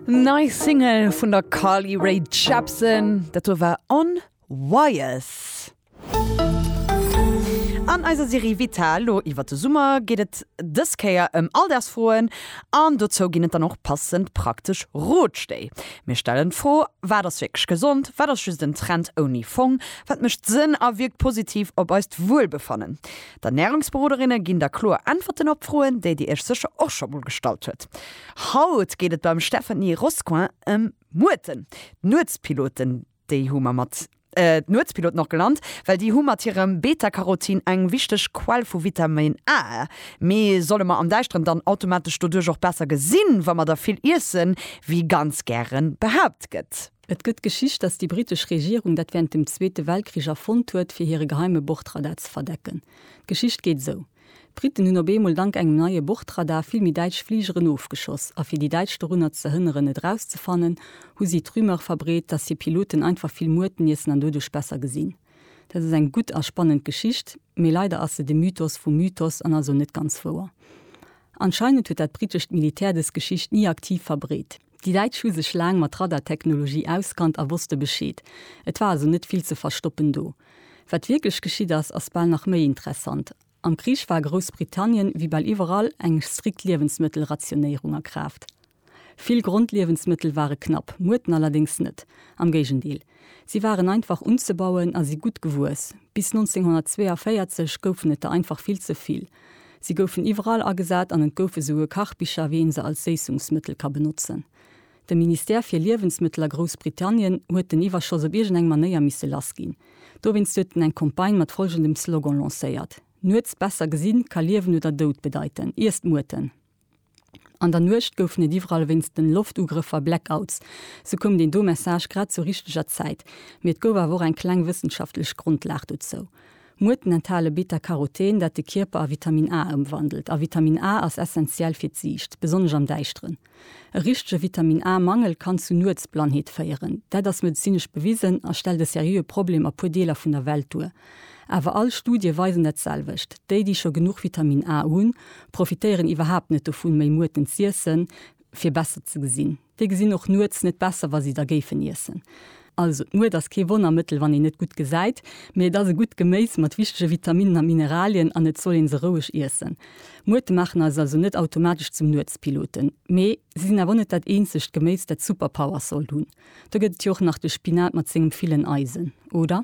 Nei Single vun der Carly Rae Jepsen, dat do war On Wires. An eiser Serie Vital lo iwwert de Summer geet et dës Kéier ëm Alldagsfroen an dozou ginn et dann och passend praktesch Rotstéi. Mir stellen d'Fro, Wat ass wierklech gesond? Wat ass just en Trend ouni Fong? Wat mécht Sënn a wierkt positiv op eist Wuelbefannen? D'Ernärungsberoderinne ginn da kloer Äntwerten op Froen, déi Dir Iech sécher och scho mol gestallt hutt. Haut geet et beim Stephanie Roscoe ëm Muerten. D'Nuetspiloten, déi hu mer mat. D'Nuetspiloten och genannt, well déi hu mat hirem Beta-Carotin eng wichteg Quell vu Vitamin A. Mee solle mer am Däischteren dann automatesch doduerch och besser gesinn, wa mer der vill iessen, wéi ganz gären behaapt gëtt? Et gëtt d'Geschicht, datt déi britesch Regierung dat während dem Zweete Weltkrich erfonnt huet, fir hire geheime Bordradar ze verdecken. D'Geschicht geet esou, D'Briten hunn op eemol dank engem neie Bordradar vill méi däitsch Fligeren ofgeschoss, a fir déi Däitsch dorunner ze hënneren, et erauszefannen, hu si d'Rumeur verbreet, datt hir Piloten einfach vill Muerten iessen an doduerch besser gesinn. Dat ass eng gutt a spannend Geschicht, mee leider ass se de Mythos vum Mythos an ass och net ganz wouer. Anscheinend huet dat britescht Militär dës Geschicht ni aktiv verbreet. Déi Däitsch hu sech laang mat Radartechnologie auskannt a wosste Bescheed. Et war also net vill ze verstoppen do. Wat wierklech geschitt ass, ass bal nach méi interessant. Am Krich war a Groussbritannien, wéi bal iwwerall, eng strikt Liewensmëttelrationéierung a Kraaft. Vill Grondliewensmëttel ware knapp, Muerten allerdéngs net. Am Géigendeel. Si waren einfach unzebauen a si gutt gewuess. Bis 1942 goufen et der einfach vill ze vill. Si goufen iwwerall agesat an et gouf esouguer Kachbicher, wéi een se als Séissungsmëttel ka benotzen. De Ministère fir Liewensmëttel a Groussbritannien huet den Iwwerschoss op iergendeng Manéier misse lassginn. Dowéinst huet en eng Campagne mat folgendem Slogan lancéiert, Nuets besser gesinn ka Liewen oder Doud bedeiten, iesst Muerten! An der Nuecht goufen et iwwerall wéinst den Loftugrëffer Blackouts. Sou koum deen do Message grad zur richteger Zäit. Mee et gouf awer och eng kleng wëssenschaftlech Grondlag dozou. Muerten enthale Beta-Karoten, dat de Kierper a Vitamin A ëmwandelt. A Vitamin A ass essentiell fir d'Siicht, besonnesch am Däischteren. E richtege Vitamin A-Mangel kann zu Nuetsblannheet féieren. Dat ass medezinesch bewisen a stellt e seriöe Problem a puer Deeler vun der Welt duer. Awer all Studie weisen dat selwecht, Déi, déi scho genuch Vitamin A hunn, profitéieren iwwerhaapt net dovun, méi Muerten z'iessen, fir besser ze gesinn. Déi gesinn och nuets net besser, wa si da géifen iessen. Also, d'Muert ass kee Wonnermëttel, wann een net gutt gesäit, mee et ass e gutt Geméis mat wichtege Vitaminnen a Mineralien an et soll ee se roueg iessen. Muerte maachen eis also net automatesch zum Nuetspiloten, mee si sinn awer och net dat eenzegt Geméis, dat Superpowers sollt hunn. Do gëtt et jo och nach de Spinat mat sengem villen Eisen, oder?